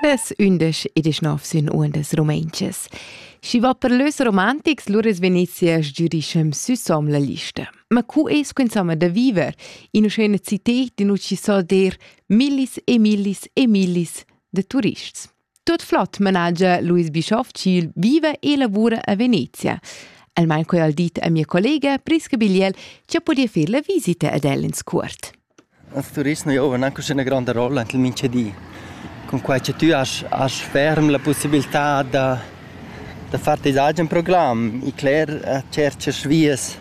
Es ündesch e deschnov sün uondas rumentschas. Schi va per lös romantics, lur es Venezia sgürischem süsom la lista. Ma cu es quinzama da viver in uschena cited in uci so der millis e millis e millis de turists? Tut flot managia Luis Bischoff ch'il viva e lavura a Venezia. El manco al dit a mia collega Priska Bigliel che podia fer la visita ad el in scurt. Als Touristen giovan anche una grande rolla in mincha di. Con quai che tu hast, hast ferm la possibilità da, da far tes agen programm e cler cercas vies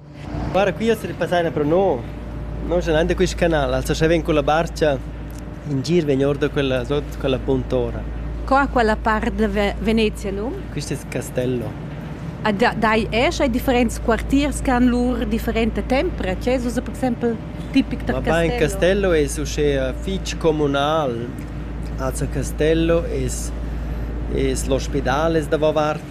Guarda, qui as repassana pro no. No scalanda quist canal, as lascha ven culla barcha. In gir vegn or da quella sot quella puntora. Co ha quella part da Venezia num? Quist es Castello. A da, dai esch ai differents quartiers che han lur differenta tempra? Che es ussa per exempel tipic da Ma Castello? Ma in Castello es uschea fich comunal. Also Castello es es l'ospidal es davo vart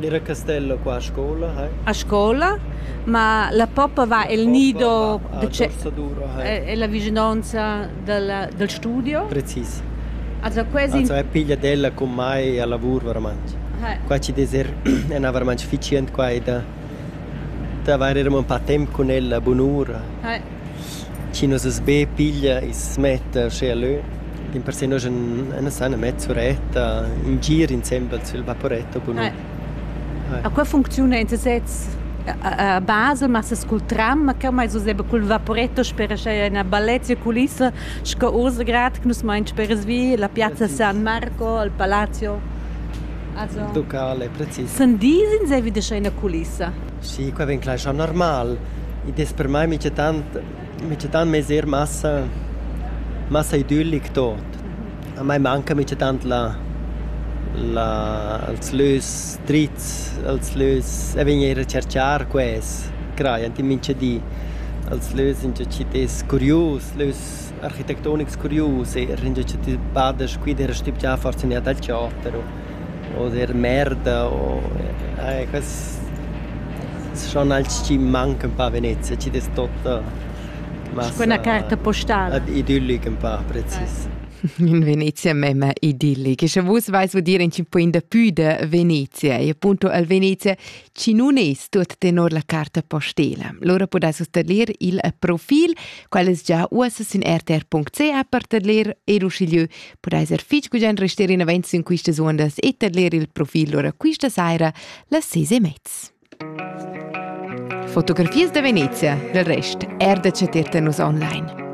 Era Castella qua a scola, hai? A scola? Ma la poppa va el nido e la vicinonza dal studio? Precis. Also quasi Also è pigliat ella cun mai a lavur varamantg. Qua ci des er ena varamantg ficient quai da d'avair eram un pa temp cun ella bunura. Chi nus as be piglia e's smetta uschè e lö, dimpersè nus en nun san na mezz uretta, in gir insembel sül vaporetto cun ün. A qua funcziuna ün sez a basel, massa cul tram, ma ch'eu m'ais usà be cul vaporetto sper uschè üna bellezza culissa sco Ursegrad che nus main speras vi, la piazza San Marco, il palazzo. Also. Locale, precis. Sün dis insaivi da scher üna culissa. Sì, quei vegn clar schon normal. Id es per mai michatant michatant mez eir massa massa idyllic tot. A mai manca michatant la la els lös trits, els lös e vegn eir a cerchar quels, crajand in mincha di. Els lös ingiò chi t'es curius, lös architectonics curius, eir ingiò chi ti bada scuid eir a stübgiar forsa gnanca dal chaot però. o der merda o eh quels schon als chi mancan pa a Venezia, chi dess totta massa quella carta postala idyllic ün pa precis. In Venezia memma idillic. Sche vus vais udir in po in da pü da Venezia e appunto al Venezia chi nun es tuot tenor la carta postela. Lura pudais vus tadlir il profil, quel es già uossa sin rtr.ca per tadlir ed uschigliö pudais er fich gugent rester in avanti in quistas uondas e tadlir il profil lura quista saira las ses e mezz. Fotografias da Venezia, del rest, erdetschet nus online.